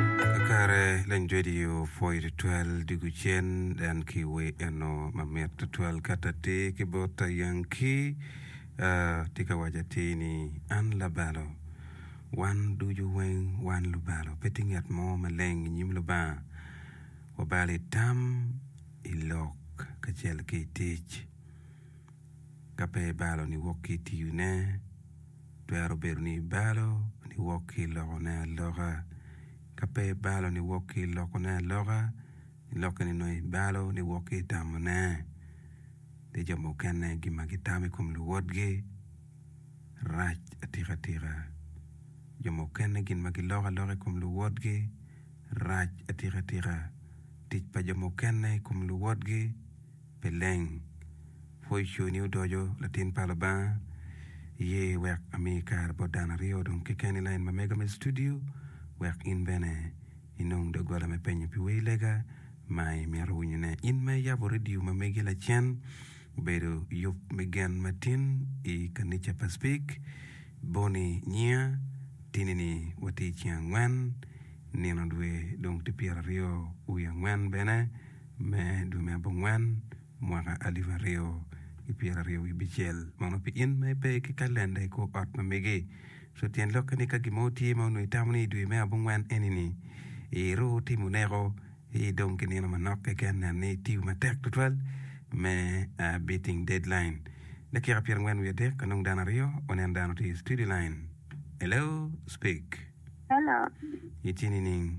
Kakare leng jwediyo pwoyo tutwal dwogo cen en ki we eno mamit tutwal kato atir ki bot a Yankee a tye ka waco atir ni an labalo wan ducu weng wan lubalo pe tye ngat mo maleng i nyim Lubanga wabalo i tam i lok kacel ki i tic. ka pe ibalo niwok ki i tiyone twero bedo ni ibalo niwok ki i lokone aloka ka pe ibalo niwok ki i lokone aloka lokke ni nongo ibalo niwok ki i tamone ki jo mukene gin ma gitamo i kom luwotgi rac atika tika jo mukene gin ma giloko aloka i kom luwotgi rac atika tika tic pa jo mukene i kom luwotgi Pi leng, pwo iconi odoco, latin pa Lubanga, iye wek ami kare bot dano aryo dong keken i lain ma mega me studio wek in bene inong doggola me penyo pi wer lega ma imito winyo ne. In ma iyabo radio ma megi lacen, obedo yub me gen ma tin i kanica pa Speke, Bonnie nyiya, tini ni watye i ceng angwen, nino dwe dong tye pyera aryo wi angwen bene, me dwe me abongwen mwaka alip aryo ki pyeraryo wibicel mono pi in ma ipe ki kalenda i kor ot ma mege so tyen lokke ni ka gin mo tye ma onongo itamo ni idwe me abongwen eni ni iru timo neko i dong ki nino manok keken nen ni itiyo matek tutwal me beating deadline dakika pyerangwen wiye adek anong dano aryo wanen dano tye i studio line hello speak. Hello. Itye nining?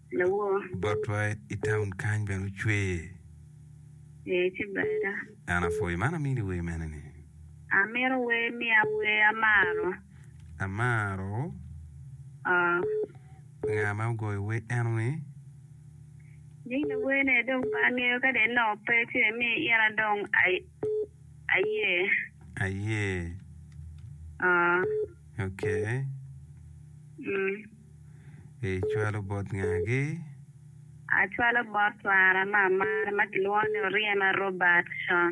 Lawo. Botwa i taun kany bene ocwer. Ee, ci ber ada. An apwoyo man amini wer mene ni. Amito wer miya wer amaro. Amaro. Oh. Nga ma ogoyo wer eno ni? Nying lawer ne dong pe angeyo kadi en nongo pe ci me miyo ina dong aye. Aye. Oh. Okay. Mm. Icwalo bot ngagi? Acwalo bot twara ma amaro ma kilwongo ni Oryema Robertson.